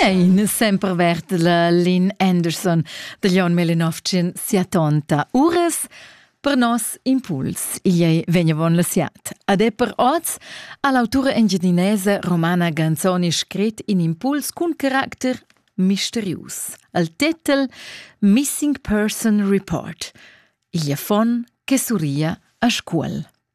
Ein sempre vert la Lynn Anderson de Leon Melinovcin sia tonta Ures per nos impuls. Igl ei vegnevon la siat. Ade per oz all'autura engiadinese romana Ganzoni scrit in impuls cun caracter misterius. Al titel Missing Person Report. Igl affon che surria a scuol.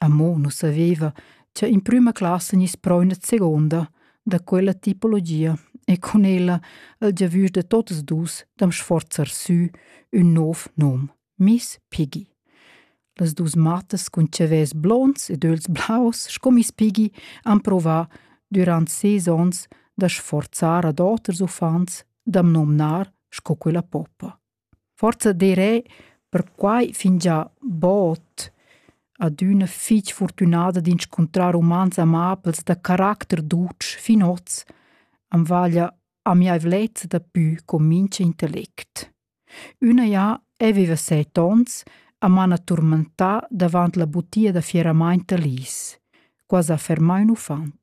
Amo nu saveva cha in prüma classa gniss prò üna seguonda da quella tipologia e cun ella el giavüsch da totas duos da'm sforzar sü ün nouv nom, Miss Piggy. Las duos mattas cun chavels blonds ed öls blaus sco Miss Piggy han provà dürant ses ons da sforzar ad oters uffants da'm nomnar sco quella poppa. Forsa direi perquai fingià bod adüna fich furtünada d'inscuntrar umans amabels da caracter dutsch fin hoz am vaglia amiaivlezza dapü co mincha intellect. Üna ja eu viva set ons e m'hana turmentà davant la butia da fieramaint da lis. Quai s'ha fermà ün uffant.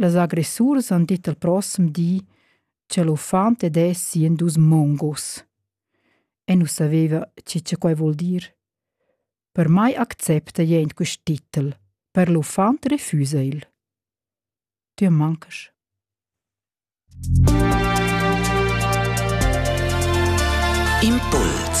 Las agressuras han dit al prossem di cha l'uffant ed es sien dus mongos. E nu saveva chi cha quai vuol dir. Per mai accepta jent quist titel, per l'uffant refusa il. Tü mancasch. Impuls